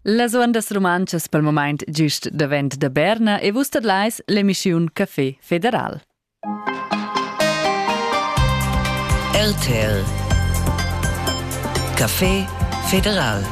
Las ondas rumantschas pel momaint gist davent da Berna e vus tadlais l'emischiun Café Federal. RTL Café Federal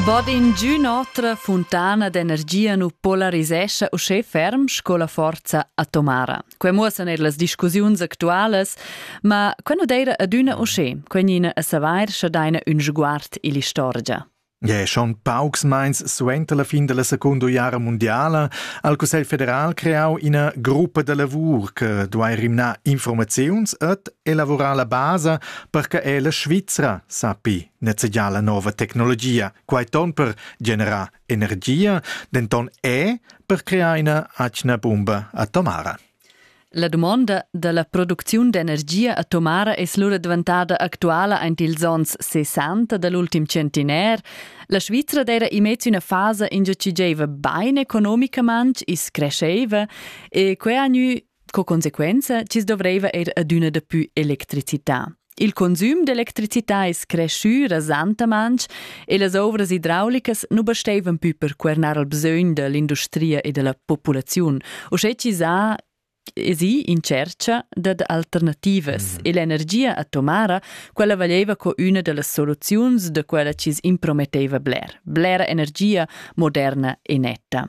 Bod in giù notre fontana d'energia nu polarisescha uschè ferm sco la forza atomara. Quei muossan eir las discussiuns actualas, ma quei nu d'eira adüna uschè, quegnina a savair scha daina ün sguard ill'istorgia. Ja, schon paucs meins suenter la fin della Secunda Guerra Mondiala ha il Cussegl federal creau ina gruppa da lavur che duai rimnar informaziuns et elaborar la basa per che ella Svizra sappi nezegiar la nova tecnologia, quai ton per generar Energia denton è per crear ina atgna bumba atomara. La dumonda dalla producziun d'energia atomara es lura daventada actuala aint ils ons 60 dell ultim centenaire. La Svizra d'eira immez üna fasa ingio chi giaiva bain economicamaing, i's crescheiva e que ha gnü Sco consequenza chi's dovreiva eir adüna dapü electricità. Il consüm d'electricità es creschü rasantamaing e las ouvras idraulicas nu basteivan pü per cuernar al bsögn da l'industria e da la populaziun, uschè chi s'ha esi in tschercha dad alternativas mm. e l'energia atomara, quella valeva co üna da las soluziuns da quella chi's imprometteva bler, blera energia moderna e netta.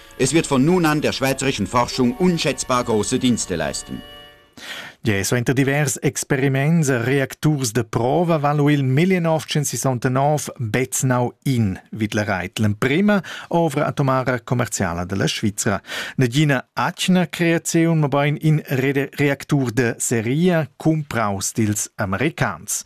Es wird von nun an der schweizerischen Forschung unschätzbar große Dienste leisten. Gia suenter divers experiments e reacturs de prova valu il 1969 Beznau in vid la reit l'emprema ovra atomara commerciala della Svizra. Negina atgna creaziun mobein in reactur de seria cumpraus dils americans.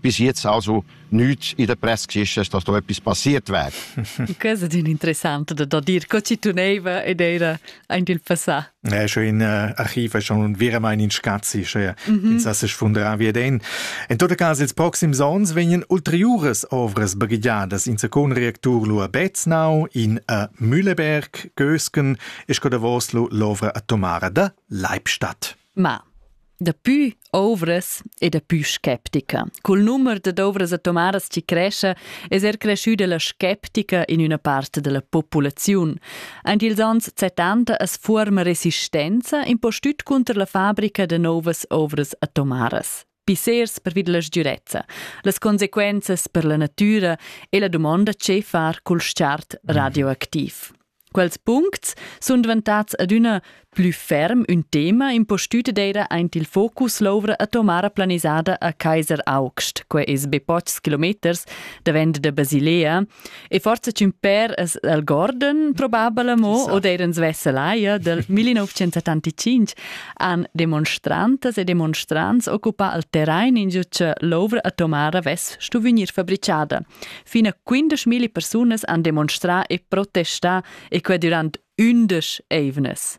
bis jetzt also nichts in der Presse ist, dass da etwas passiert wäre. Questa è interessante da, da dir, co ci tuneva ed era ein il passà. Ja, schon in äh, Archiv schon wir mein in Schatzi, ja. Mhm. In sasse sfundra wie den. En tot cas ils proxims ons vegnan ulteriures ovras baghigiadas in secon reactur lu a Betznau, in a Mülleberg, Gösken, e sco da Voslo l'ovra atomara da Leibstadt. Ma Daplü ovras e daplü skeptica. Cul numer dad ovras atomaras chi crescha es er creschüda la skeptica in üna part da la populaziun. Aint ils ans 70 as fuorma resistenza in po stüt cunter la fabrica da novas ovras atomaras. pissers pervi dalla sgiurezza, las consequenzas per la natura e la dumonda che far cul chart radioactiv. Quels puncts sun dvantats adüna plü ferm ün tema impostüt d'eira aint il focus l'ouvra atomara planisada a Kaiser Augst, que es be pochs kilometers davent da Basilea, E forza ch'ün per es el Gordon probabel amo so. oder ins Vesselaya del 1975 han demonstrantas e demonstrants occupà al terrain in giu cha l'ovra atomara vess stu vegnir fabricada. Fin a 15.000 persunas han demonstrà e protestà e quai durant ündesch eivnas.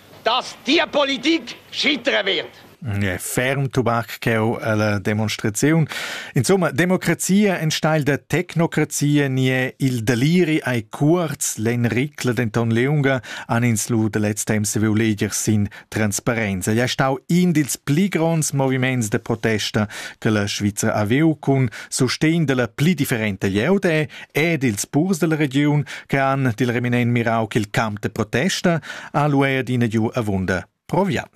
dass tia politik schittere wird. Ja, ferm Tubak cheu alla demonstraziun. Insomma, democrazia in steil da tecnocrazia nie il deliri ai kurz len Ricla denton leunga an ins lu de letz temps se veu leger sin transparenza. Ja stau in dils pli gronds moviments de protesta che la Schweizer aveu cun sustegn della pli differente Jeode ed ils purs della regiun che han dil reminent mirau ch'il camp de protesta ha lu adina giu avunda proviant.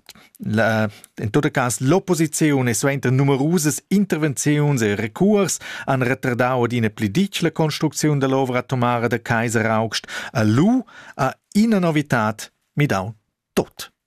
La, in tot cas l'opposiziun e suenter numerusas intervenziuns e recurs han retardau adina pli ditg la construcziun dell'ovra atomara de Kaiser August a lu a ina novitad midau tot.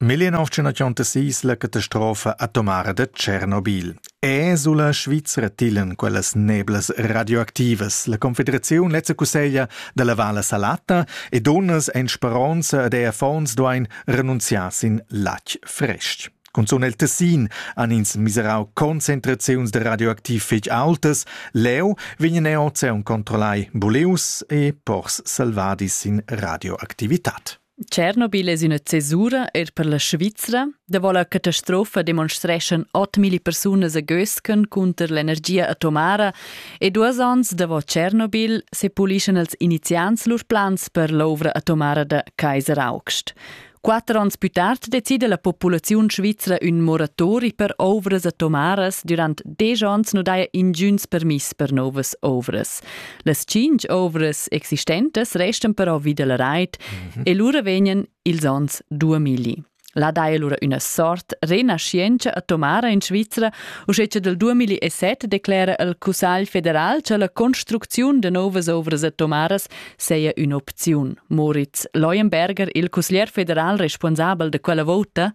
1936 la catastrofa atomara da Tschernobyl. È sulla Svizra tilen quellas neblas radioactivas. La Confederaziun lezza cusseglia da lavar la salata e donnas en speronza ed er affons duain renunziar sin latg fresc. Cunzun el Tessin han ins miserau concentraziuns de radioaktiv fetg aultas, leu vegn er ozean controllai buleus e pors salvadi sin radioactivitat. Tschernobyl es üna cesura eir per la Svizra. Davo la catastrofa demonstreschan 8000 persunas a Gösken cunter l'energia atomara e duos ans davo Tschernobyl se pulischan els iniziants lur plans per l'ovra atomara da Kaiser August. Quatter ans pü tard decida la populaziun svizra ün moratori per ovras atomaras durant desch ans nu daja ingüns permiss per novas ovras. Las tschintg ovras existentas restan però vi dalla reit mhm. e lura vegnan ils onns 2000. Là dai allora üna sort renaschientscha atomara in Svizra, uschè che dal 2007 declera il Cussagl federal che la construcziun de novas ovras atomaras seia un'opziun. Moritz Leuenberger, il cusglier federal responsabel de quella vota,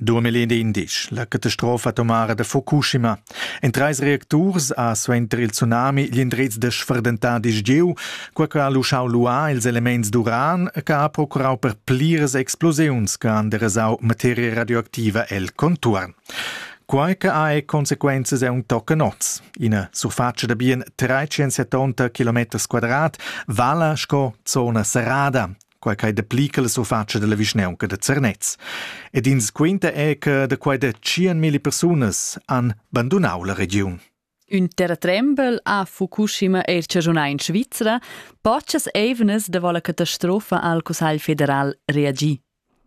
2011, la catastrofa atomara da Fukushima. En treis reacturs ha suenter il tsunami gli indrez da sferdentà disgieu, qua che ha luschau luà ils elements d'uran che ha procurau per pliras explosiuns che han derasau materia radioactiva el contuorn. Quai che ha e consequenzas è un tochen oz. Ina surfatscha da bien 370 km quadrat vala sco zona serrada. quai quai dapli che la surfatscha della vischnaunca da Zernez. Ed ins quinta è che da quai da 100.000 persunas han bandunau la regiun. Ün terratrembel a Fukushima eir chaschunà in Svizra, pochas eivnas davo la catastrofa al Cussagl federal reagi.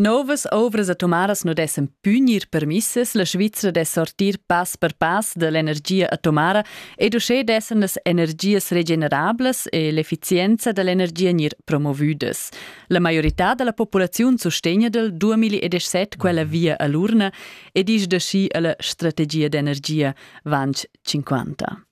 Novas ovras atomaras nu dessan pü gnir permissas, la Svizra dess sortir pass per pass da l'energia atomara ed uschè dessan las energias regenerablas e l'efficienza da l'energia gnir promovüdas. La maiorità da la populaziun sustegna dal 2017 quella via a l'urna e disch da schi a la strategia d'energia Vanch 50.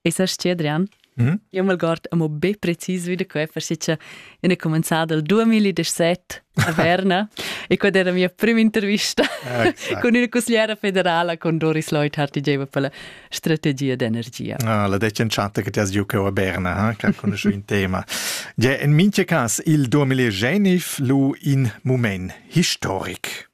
E sa stia, Adrian? Mm -hmm. Io m'algord amo be precis vi da quai, forse ina comenzada il 2017 a Verna e quella era mia prima intervista exact. con una consigliera federala con Doris Leuthard che diceva per la strategia d'energia. Ah, la decentschata che ti has giocado a Berna, eh, che conosci un tema. Ja, in mincha cas, il 2019 lu in moment historic.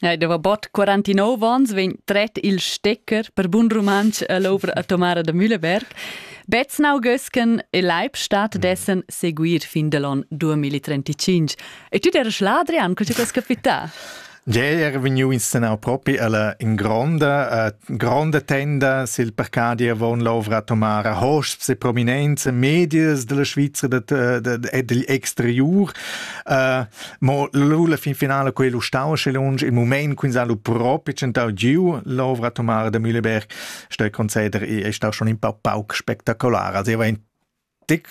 Ei deva bod 49 ons vegn tret il stecker per bun rumantsch all'ovra atomara da Mühleberg. Beznau gösken e Leibstadt dessen seguir fin dell'on 2035. E tu der Schladrian, cosa che è capità? Ieri era vegniu inscenau propi alla in gronda, uh, gronda tenda sil parcadi avon l'ovra atomara hosps e prominenza medias della Svizzera e degl exteriur. Uh, Mo la fin finala quei lu stau sche lunsch il moment quins ha lu propi tschentau giu l'ovra Tomara de Mühleberg ste conceder è stau schon in pa pauc spektakular also war ein tic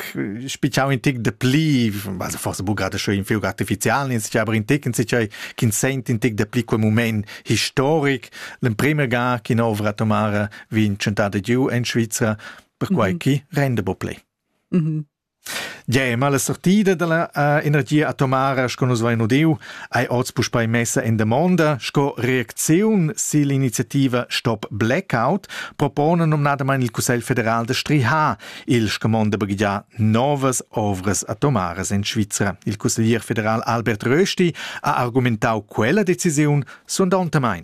spichau in tic de pli also forse bu gerade schon in fiug artifizial in sich aber in tic in sich kin sent in tic de pli quel moment historic l'em prima ga kin ovra Tomara wie in tschentade giu en Schweizer per quai mhm. chi rende bo play mhm Gemma, la sortida dalla energia atomara sco nus vein udiu, ei oz puspei messa en damonda. Sco reacziun sill'iniziativa Stop Blackout propona numnadamein il Cussegl federal da strihar il scumond da baghegiar novas ovras atomaras en Svizra. Il cusseglier federal Albert Rösti ha argumentau quella decisiun sondontamein.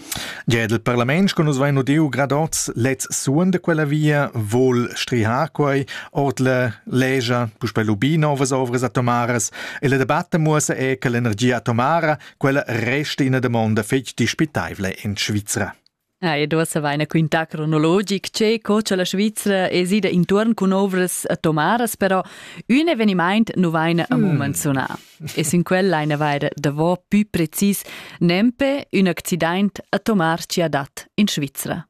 Gia dal parlament sco nus vain udiu gradots lets suon da quella via vol strihar quai ord la legia puspei lubi novas ovras atomaras e la debatta muossa è che l'energia atomara quella resta ina domanda fetg dispitaivla in Svizra. Ah, ed uossa vaina quintà cronologic che co cha la Svizra es ida intuorn cun ovras atomaras, però ün evenimaint nu vaina amo hmm. manzunà. e sin quel lain avair davò pü precis nempe ün accidaint a tomar ci adat in Svizra.